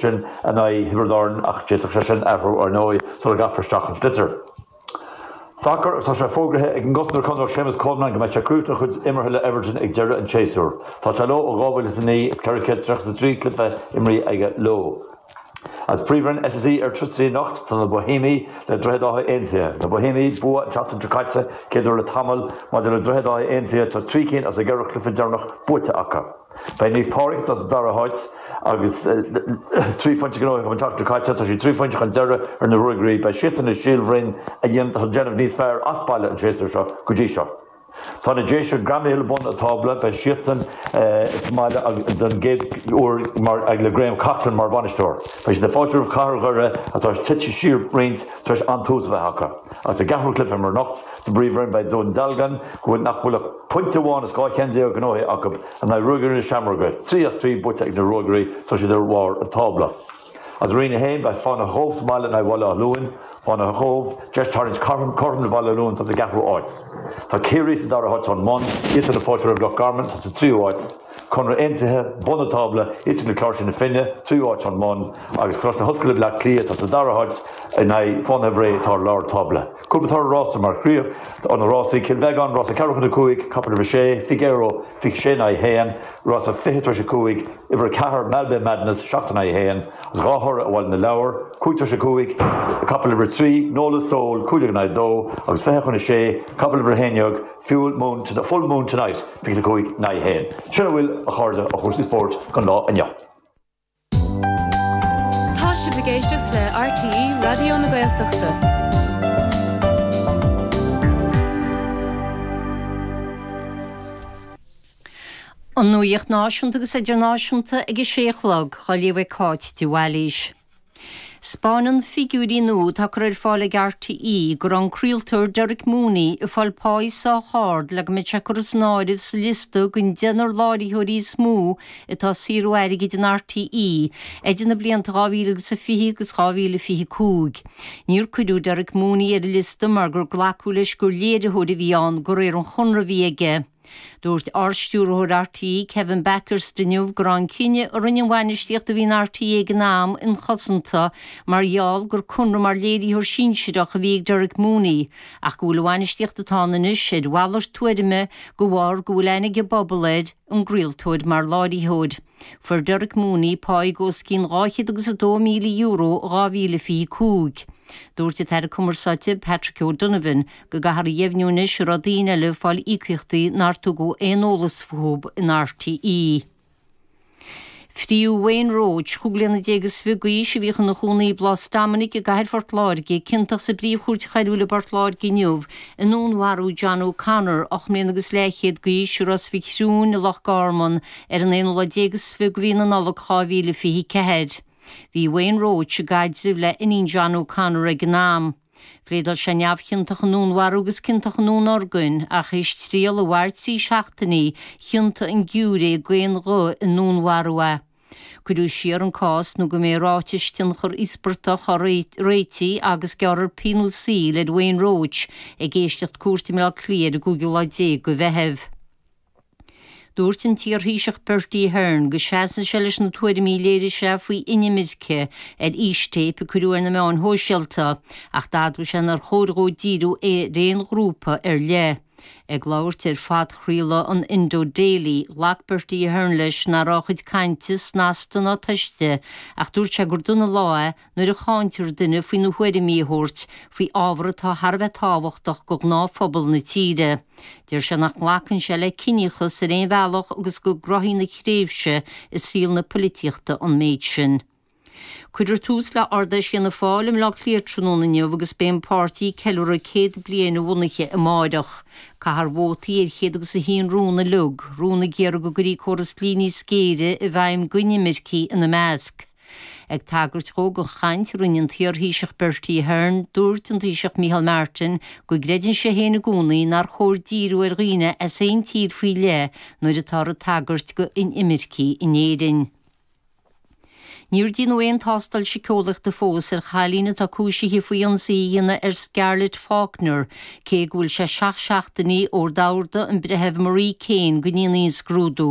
sin in aghaidh Thiobraid Árann ach d'fhéadfadh sé sin athrú, ar ndóigh, sula gcaithfear isteach an sliotar. Sacar agus tá sé fógraithe ag an gcosantóir Conallach Séamus Coleman go mbeidh sé ag críochnú a chuid imeartha le Everton ag deireadh an tséasúir. Tá sé leo ó 2009 is 433 cluiche imríthe aige leo. As príomhroinn SSE Airtricity anocht tá na Boihéimigh le Droichead Átha Aontaithe. Na Boihéimigh bua an tseachtain seo caite céad uair le tamall. Maidir le Droichead Átha Aontaithe tá trí cinn as a gceithre chluiche deireanach buaite acu. Beidh Naomh Pádraig sa dara háit agus trí phointe gnóthaithe acu an tseachtain seo caite. Tá siad trí phointe chun deiridh ar na Ruagairí. Beidh siadsan in aghaidh Shíol Bhroin atá ag déanamh níos fearr as baile an séasúr seo go dtí seo. Tá na Déise greamaithe le bun an tábla. Beidh siadsan sa mbaile don gcéad uair le Graham Coughlan mar bhainisteoir. Beidh siad ag fáiltiú roimh Chathair Dhoire atá tite siar roinnt tar éis an-tús a bheith acu. Agus sa gceathrú cluiche mór anocht, Sa bpríomhroinn beidh Dún Dealgan, go bhfuil, nach bhfuil ach pointe amháin as dhá cheann déag gnóthaithe acu in aghaidh Ruagairí na Seamróige, trí as trí buaite ag na Ruagairí agus iad ar bharr an tábla. As Roinn 1 beidh Fánaithe Chóbh sa mbaile in aghaidh Bhaile Átha Luain, Fánaithe Chóbh, deis tarraingt cothrom le Baile Átha Luain, atá sa gceathrú háit. Tá Ciarraí sa dara háit ón mbun, iadsan ag fáiltiú roimh Loch Garman atá sa tríú háit. Conradh Aontaithe, bun an tábla, istigh le Cláirsigh na Finne, tríú háit ón mbun, agus Coláiste na hOllscoile Bleá Cliath, atá sa dara háit, in aghaidh Fánaithe Bhré, atá i lár tábla. Cúpla toradh rása mar chríoch ó na rásaí, Cill Bheagáin, rása ceathrú chun a cúig, capall uimhir 6, Figaro, fiche sé in aghaidh a haon, rása fiche tar éis a cúig, uimhir 4, Malbay Madness, seacht in aghaidh a haon, agus dhá thoradh ó Bhaile na Lobhar, cúig tar éis a cúig, capall uimhir 3, Nola Soul, cúig déag in aghaidh a dó, agus fiche chun a sé, capall uimhir a haon déag. Full Moon Tonight, is é 5 in aghaidh a 1. Sin a bhfuil, a chairde, ó chúrsaí spóirt don lá inniu. Tá sibh ag éisteacht le RTÉ Raidió na Gaeltachta. An nuacht náisiúnta agus idirnáisiúnta ag a sé a chlog, dhá léamh ag Cáit de Bhailís. 'Spáineann figiúirí nua atá curtha ar fáil ag RTÉ go raibh an craoltóir Derek Mooney ag fáil páí sách ard le go mbeadh sé curtha san áireamh sa liosta den deichniúr láithreoirí is mó atá ag saothrú airgid in RTÉ idir na blianta 2000 agus a 20 agus 2025. Níor cuireadh Derek Mooney ar an liosta mar gur glacadh leis gur léiritheoir a bhí ann de réir an chonradh a bhí aige. Dúirt Ard-Stiúrthóir RTÉ, Kevin Bakhurst, inniu go raibh an cinneadh a rinne an bhainistíocht a bhí in RTÉ ag an am inchosanta mar gheall gur conradh mar léiritheoir sinsearach a bhí ag Derek Mooney ach go bhfuil an bhainistíocht atá ann anois ar mhalairt tuairime de bharr go bhfuil aithne ag an bpobal air an gcraoltóir mar láithreoir. Fuair Derek Mooney pá os cionn dhá chéad agus a dó míle euro in 2025. Dúirt an tAire Cumarsáide, Patrick O'Donovan, go gcaithfear a dheimhniú anois an raibh daoine eile ag fáil íocaíochtaí nár tugadh aon eolas fúthu in RTÉ. Fritheadh Wayne Roche, chúig bliana déag is fiche d'aois, a bhíodh ina chónaí i bPlás Dominic i gcathair Phort Láirge, ciontach sa bPríomh-Chúirt Choiriúil i bPort Láirge inniu i ndúnmharú John O'Connor, ocht mbliana agus leathchéad d'aois, i Ros Mhic Thriúin i Loch Garman ar an aonú lá déag is fiche de mhí na Nollag 2024. Bhí Wayne Roche i gcaidreamh le iníon John O'Connor ag an am. Phléadáil sé neamhchiontach i ndúnmharú agus ciontach i ndúnorgain, ach théis triail a mhair trí seachtainí, chiontaigh an giúiré d'aon ghuth i ndúnmharú é. Cuireadh siar an cás nó go mbeidh ráitis tionchair íospartach á réiteach agus gearrfar pionós saoil ar Wayne Roche ag éisteacht cúirte i mBleá Cliath ar an gcúigiú lá déag de Mheitheamh. Dúirt an t-iarThaoiseach Bertie Ahern go seasann sé leis na tuairimí a léirigh sé faoi inimirce ar fhístéip a cuireadh ar na meáin shóisialta ach d'admhaigh sé nár chóir dhó díriú ar aon ghrúpa ar leith. Ag labhairt ar phodchraoladh an Indo Daily, ghlac Bertie Ahern leis nach raibh a chuid cainte snasta ná tofa ach dúirt sé gur dona lá é nuair a cháintear duine faoina thuairimí a thabhairt faoi ábhar atá thar a bheith tábhachtach do ghnáthphobal na tíre. Deir sé nach nglacann sé le ciníochas ar aon bhealach agus go gcruthaíonn a thréimhse i saol na poilitíochta an méid sin. Cuireadh tús le Ard Fheis Fhianna Fáil i mBleá Cliath tráthnóna inniu agus beidh an páirtí ag ceiliúradh céad bliain a bhunaithe amáireach. Caithfear vótaí ar chéad agus a haon rún uilig, rún ag iarraidh go gcuirí córas dlí níos géire i bhfeidhm go inimircigh ina measc. Ag tagairt dhó don chaint a rinne an t-iarThaoiseach Bertie Ahern, dúirt an Taoiseach Micheál Martin go gcreideann sé féin i gcónaí nár chóir díriú ar dhaoine as aon tír faoi leith nuair atáthar ag tagairt d'inimircigh in Éirinn. Níor déanadh aon tástáil síceolaíochta fós ar chailín atá cúisithe faoi ionsaí a dhéanamh ar Scarlett Faulkner, cé go bhfuil sé seacht seachtainí ó d'ordaigh an Breitheamh Marie Keane go ndéanfaí an scrúdú.